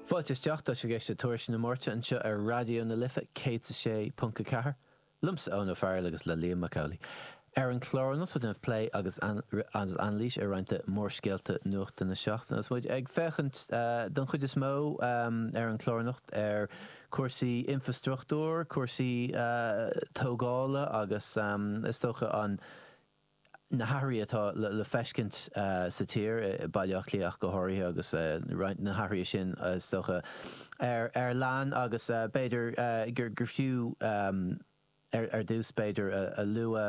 Fáilte isteach, tá sibh ag éisteacht le Tuairisc na Máirte anseo ar Raidió na Life 106.4, liomsa Eoin Ó Fearghail agus le Liam Mac Amhlaigh. Ar an chlár anocht beidh plé agus anailís ar roinnt de mhórscéalta nuachta na seachtaine agus muid ag féachaint don chuid is mó ar an chlár anocht ar cúrsaí infrastruchtúr, cúrsaí tógála agus is dócha an. na hathruithe atá le feiscint sa tír, i Baile Átha Cliath ach go háirithe, agus roinnt de na hathruithe sin, is dócha, ár linne agus b'fhéidir gur fiú, ar dtús b'fhéidir, a lua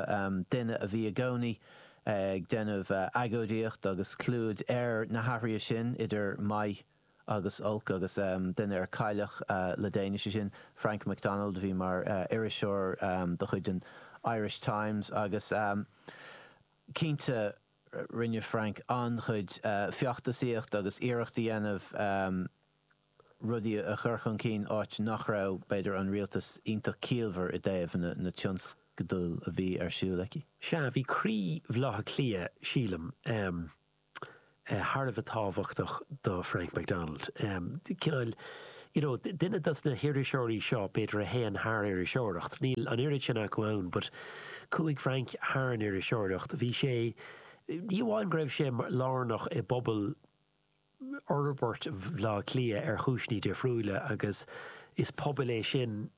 duine a bhí i gcónaí ag déanamh agóidíocht agus clúdach ar na hathruithe sin, idir maith agus olc agus duine a cailleadh le déanaí, sé sin Frank McDonald a bhí mar iriseoir de chuid an Irish Times agus cinnte rinne Frank an-chuid feachtasaíocht agus iarracht a dhéanamh rudaí a chur chun cinn áit nach raibh, b'fhéidir, an rialtas iontach ciallmhar i dtaobh na tionscadal a bhí ar siúl aici. Sea, bhí croí Bhaile Átha Cliath, sílim. thar a bheith tábhachtach do Frank McDonald. Cineál, you know, duine dos na hiriseoirí seo, b'fhéidir, a théann thar iriseoireacht. Níl an oiread sin acu ann but chuaigh Frank thar an iriseoireacht. Bhí sé, ní amháin go raibh sé lárnach i bpobal fhorbairt Bhaile Átha Cliath ar chúiseanna difriúila agus is pobal é sin a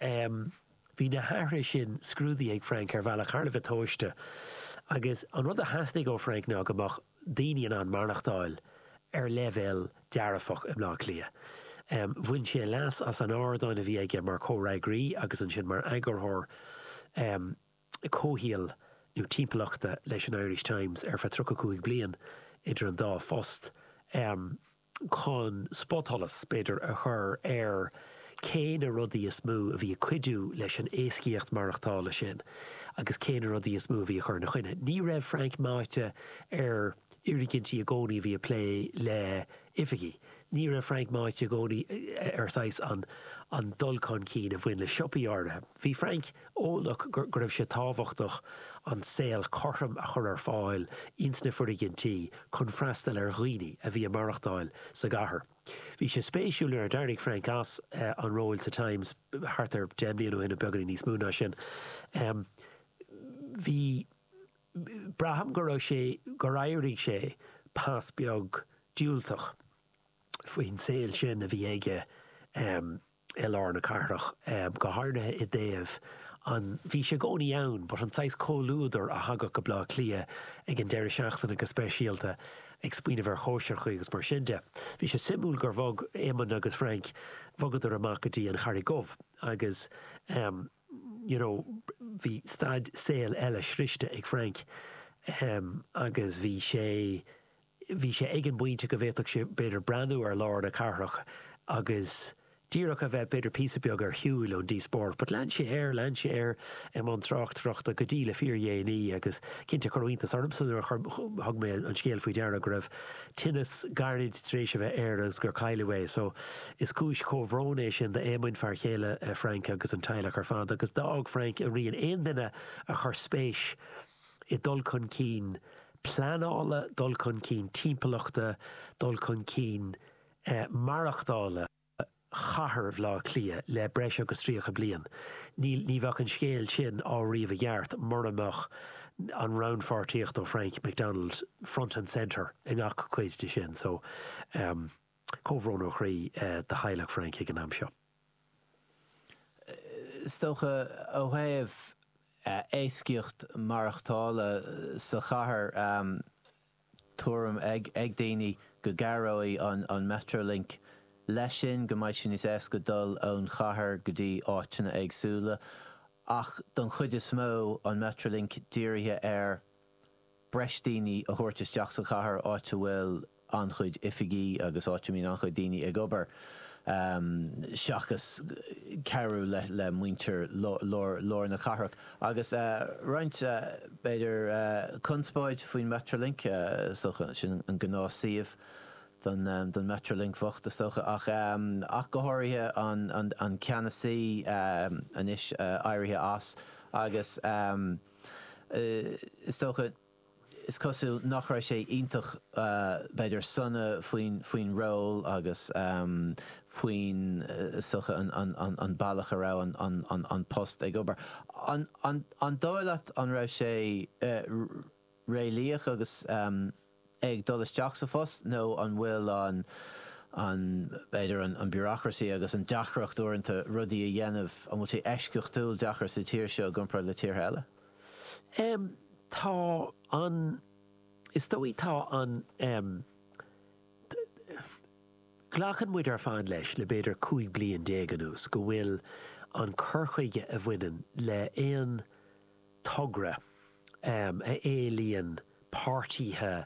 Um Bhí na hathruithe sin scrúdaithe ag Frank ar bhealach thar a bheith tomhaiste agus an rud a theastaigh ó Frank ná go mbeadh daoine in ann maireachtáil ar leibhéal dearfach i mBleá Cliath. Um Bhain sé leas as an ardán a bhí aige mar chomhfhreagraí agus ansin mar eagarthóir um comhshaol nó timpeallachta leis an Irish Times ar feadh tríocha cúig bliain idir an dá phost. Um chun spotsholas, b'fhéidir, a chur ar cé na rudaí is mó a bhí ag cuidiú leis an éascaíocht mhaireachtála sin agus cé na rudaí is mó a bhí ag cur ina choinne. Ní raibh Frank meáite ar fhoirgnimh i gcónaí a bhí ag plé le oifigí. Ní raibh Frank meáite i gcónaí ar saghas an dul chun cinn a bhain le siopaí áirithe. Bhí Frank. eolach go raibh sé tábhachtach an saol cothrom a chur ar fáil ins na foirgintí chun freastal ar dhaoine a bhí ag maireachtáil sa gcathair. Bhí sé spéisiúil nuair a d'éirigh Frank as an ról sa Times thart ar deich mbliana ó shin nó beagáinín níos mó ná sin, bhí, braithim go raibh sé, gur éirigh sé pas beag diúltach faoin saol sin a bhí aige. i lár na cathrach, go háirithe i dtaobh an bhí sé i gcónaí ann but an tsaghas comhluadar a thagadh go Baile Átha Cliath ag an deireadh seachtaine go speisialta ag smaoineamh ar chóisireachaí agus mar sin de. Bhí sé suimiúil gur bhog Éamonn agus Frank bhogadar amach go dtí an Charraig Dhubh agus em you know bhí staid saol eile sroichte ag Frank em agus bhí sé bhí sé ag an bpointe go bhféadfadh sé, b'fhéidir, breathnú ar lár na cathrach agus díreach a bheith, b'fhéidir, píosa beag ar shiúil ón díospóireacht. But lean sé air, lean sé air i mbun tráchtaireachta go dtí le fíordhéanaí agus cinnte cuireadh iontas ormsa nuair a thug mé an scéal faoi deara go raibh tinneas gairid tar éis a bheith air agus gur cailleadh é. So, is cúis comhbhróin é sin d'Éamonn, fear céile Frank agus an teaghlach ar fad agus d'fhág Frank a rian. Aon duine a chuir spéis i i dul chun cinn pleanála, dul chun cinn timpeallachta, dul chun cinn maireachtála chathair Bhaile Átha Cliath le breis agus 30 bliain. Ní bheadh an scéal sin á ríomh i gceart mura mbeadh an rannpháirtíocht ó Frank McDonald front and centre i ngach cuid de sin. So, comhbhrón ó chroí do theaghlach Frank ag an am seo. Is dócha, ó thaobh éascaíocht maireachtála sa chathair, tuairim ag daoine go gcabhróidh an Metrolink leis sin, go mbeidh sé níos éasca dul ón gcathair go dtí áiteanna éagsúla. Ach don chuid is mó, an Metrolink dírithe ar. breis daoine a thabhairt isteach sa chathair, áit a bhfuil an-chuid oifigí agus áit a mbíonn an-chuid daoine ag obair, seachas cabhrú le muintir lár na cathrach. Agus roinnt, b'fhéidir, conspóid faoin Metrolink, is dócha. Sin an gnáthshuíomh don Metrolink bocht, is dócha. Ach go háirithe an ceannasaí, anois éirithe as, agus. is dócha, is cosúil, nach raibh sé iontach, b'fhéidir, sona faoin ról agus faoin, is dócha, an bealach a raibh an post ag obair. An dóigh leat an raibh sé réalaíoch agus. ag dul isteach sa phost nó an bhfuil an, an, b'fhéidir an, an bureaucracy agus an deacracht uaireanta rudaí a dhéanamh, an bhfuil sé eisceachtúil deacair sa tír seo i gcomparáid le tíortha eile? Em, tá an, is dóigh tá an, em, glacann muid ar fad leis le b'fhéidir 15 bliain anuas go bhfuil an cur chuige a bhaineann le aon, togra a éilíonn páirtíthe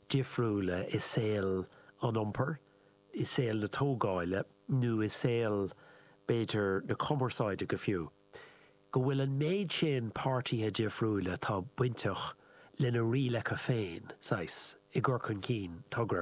difriúla i saol an iompair, i saol na tógáile nó i saol, b'fhéidir, na cumarsáide go fiú, go bhfuil an méid sin páirtíthe difriúla atá bainteach lena rialacha féin, saghas, i gcur chun cinn togra.